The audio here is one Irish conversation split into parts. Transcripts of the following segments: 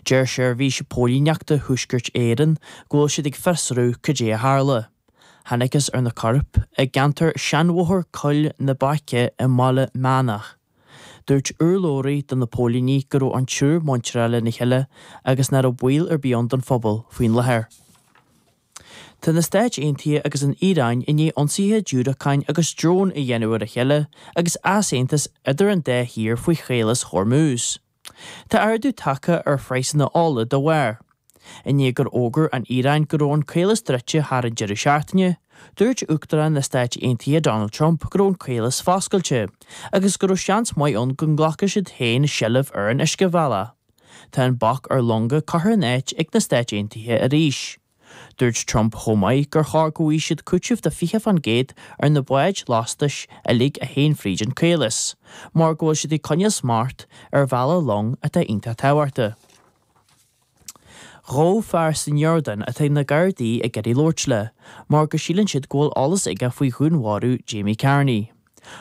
Deir Seirbhís Póilíneachta Thuaiscirt Éireann go bhfuil siad ag fiosrú cad é a tharla. Thángthas ar na coirp i gceantar Sheanbhóthar Coill na Baice i mBaile Meánach. Dúirt urlabhraí do na póilíní go raibh an triúr muinteartha lena chéile agus nach raibh baol ar bith ann don phobal faoi láthair. Tá na Stáit Aontaithe agus an Iaráin i ndiaidh ionsaithe diúracáin agus drón a dhéanamh ar a chéile agus easaontas idir an dá thír faoi Chaolas Hormuz. Tá ardú tagtha ar phraghsanna ola dá bharr. I ndiaidh gur fhógair an Iaráin go raibh an caolas druidte thar an deireadh seachtaine, dúirt Uachtarán na Stáit Aontaithe Donald Trump go raibh an caolas foscailte agus go raibh seans maith ann go nglacfadh siad féin seilbh ar an uiscebhealach. Tá an bac ar longa curtha in áit ag na Stáit Aontaithe arís. Dúirt Trump chomh maith gur chóir go bhfaighidh siad cúiteamh de 20% ar na báid lastais uilig a théann fríd an caolas, mar go bhfuil siad ag coinneáil smacht ar bhealach long atá iontach tábhachtach. Gabhadh fear san Iordáin atá na Gardaí ag iarraidh labhairt leis, mar go síleann siad go bhfuil eolas aige faoi dhúnmharú Jamie Carney.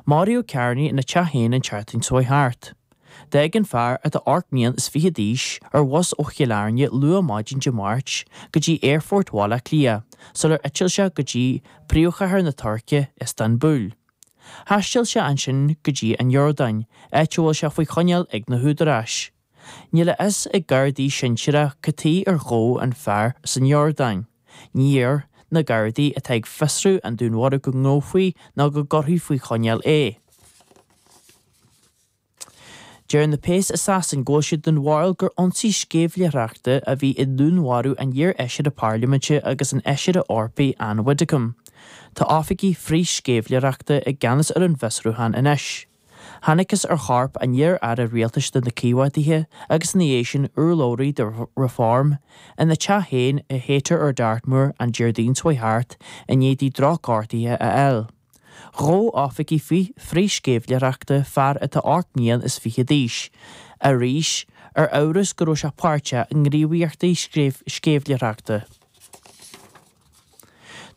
Maraíodh Carney ina teach féin an tseachtain seo thart. D'fhág an fear atá ocht mbliain is fiche d'aois ar bhus ó Chill Airne luath maidin Dé Máirt go dtí Aerfort Bhaile Átha Cliath sular eitil sé go dtí príomhchathair na Tuirce, Iostanbúl. Thaistil sé ansin go dtí an Iordáin, áit a bhfuil sé faoi choinneáil ag na húdaráis. Níl a fhios ag Gardaí sinsearach cad chuige ar gabhadh an fear san Iordáin. Níor iarr na Gardaí atá ag fiosrú an dúnmharaithe go ngabhfaí ná go gcuirfí faoi choinneáil é. Deir na péas i Sasain go bhfuil siad den bharúil gur ionsaí sceimhlitheoireachta a bhí i ndúnmharú an iar-Fheisire Parlaiminte agus an Fheisire Eorpaigh Ann Widdecombe. Tá oifigigh frith-sceimhlitheoireachta i gceannas ar an bhfiosrúchán anois. Thángthas ar chorp an iar-aire rialtais de na Coimeádaithe agus ina dhiaidh sin urlabhraí do Reform, ina teach féin i Haytor ar Dartmoor an Déardaoin seo thart i ndiaidh di drochghortuithe a fháil. Ghabh oifigigh frith-sceimhlitheoireachta, fear atá ocht mbliain is fiche d'aois, arís, ar amhras go raibh sé páirteach i ngníomhaíochtaí sceimhlitheoireachta.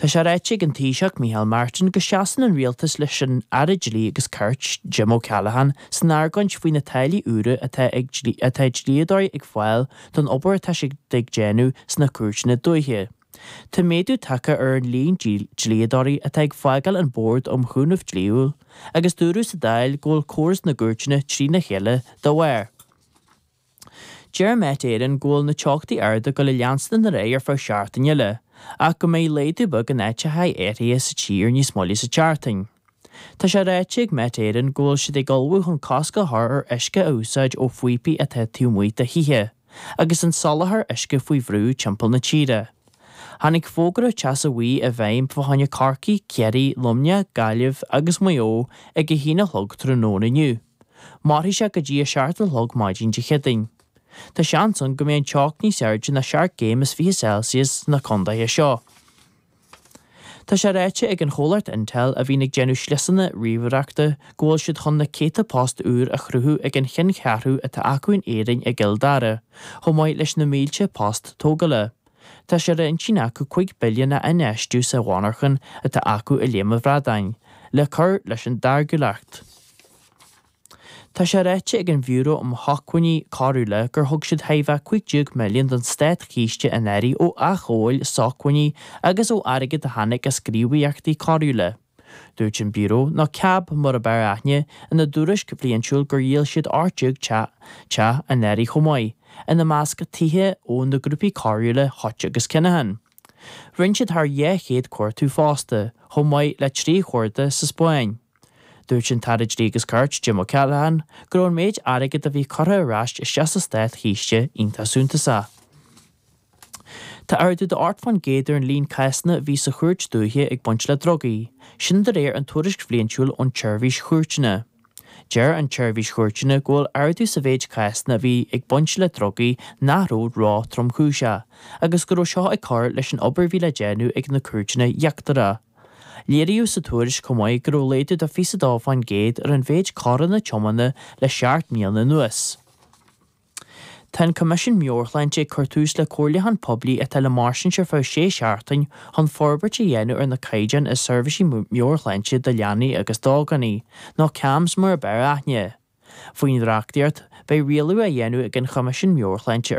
Tá sé ráite ag an Taoiseach Micheál Martin go seasann an Rialtas leis an Aire Dlí agus Cirt, Jim O'Callaghan, san argóint faoi na táillí úra atá ag atá dlíodóirí ag fáil don obair atá siad ag déanamh sna cúirteanna dúiche. Tá méadú tagtha ar an líon dlíodóirí atá ag fágáil an Bord um Chúnamh Dlíthiúil agus dúradh sa Dáil go bhfuil córas na gcúirteanna trína chéile dá bharr. Deir Met Éireann go bhfuil na teochtaí arda go le leanstan ar aghaidh ar feadh seachtaine eile ach go mbeidh laghdú beag in áiteachaí áirithe sa tír níos moille sa tseachtain. Tá sé ráite ag Met Éireann go bhfuil siad ag ullmhú chun cosc a chur ar uisce a úsáid ó phíopaí atá taobh amuigh de thithe agus an soláthar uisce faoi bhrú timpeall na tíre. Tháinig fógra teasa bhuí i bhfeidhm fá choinne Corcaigh, Ciarraí, Luimneach, Gaillimh agus Maigh Eo ag a haon a chlog tráthnóna inniu. Mairfidh sé go dtí a seacht a chlog maidin Dé Céadaoin. Tá seans ann go mbeidh an teocht níos airde ná seacht gcéim is fiche Celsius sna condaetha seo. Tá sé ráite ag an chomhlacht Intel, a bhíonn ag déanamh sliosanna ríomhaireachta, go bhfuil siad chun na céadta post úr a chruthú ag an cheanncheathrú atá acu in Éirinn i gCill Dara, chomh maith leis na mílte post tógála. Tá sé ar intinn acu cúig billiún a infheistiú sa mhonarchan atá acu i Léim an Bhradáin le cur leis an dtáirgiúlacht. Tá sé ráite ag an Bhiúró um Shócmhainní Coiriúla gur thug siad chóir a bheith cúig déag milliún don Státchiste anuraidh ó athghabháil sócmhainní agus ó airgead a tháinig as gníomhaíochtaí coiriúla. Dúirt an Biúró nó CAB mar ab fhearr aithne ina dtuairisc bhliaintiúil gur dhíol siad ocht déag teach anuraidh chomh maith, ina measc tithe ó na grúpaí coiriúla Hutch agus Kinahan. Rinne siad thar dhá chéad cuartú fosta, chomh maith le trí chuardach sa Spáinn. Dúirt an tAire Dlí agus Cirt, Jim O'Callaghan, go raibh an méid airgid a bhí curtha ar ais isteach sa Státchiste iontach suntasach. Tá ardú d'ocht fán gcéad ar an líon cásanna a bhí sa Chúirt Dúiche ag baint le drugaí, sin de réir an tuairisc bhliaintiúil ón tSeirbhís Chúirteanna. Deir an tSeirbhís Chúirteanna go bhfuil ardú sa mhéid cásanna a bhí ag baint le drugaí nach raibh ró-tromchúiseach agus go raibh seo ag cur leis an obair a bhí le déanamh ag na cúirteanna íochtaracha. Léiríodh sa tuairisc chomh maith go raibh laghdú de 22 fán gcéad ar an mhéid coireanna tiomána le seacht mbliana anuas. Tá an Coimisiún Meabhairshláinte ag cur tús le comhairliúchán poiblí atá le mairstint ar feadh sé seachtain chun forbairt a dhéanamh ar na caighdeáin i seirbhísí meabhairshláinte do leanaí agus d'ógánaigh, nó CAMHS mar ab fhearr aithne. Faoin reachtaíocht, beidh rialú á dhéanamh ag an Choimisiún Meabhairshláinte ar.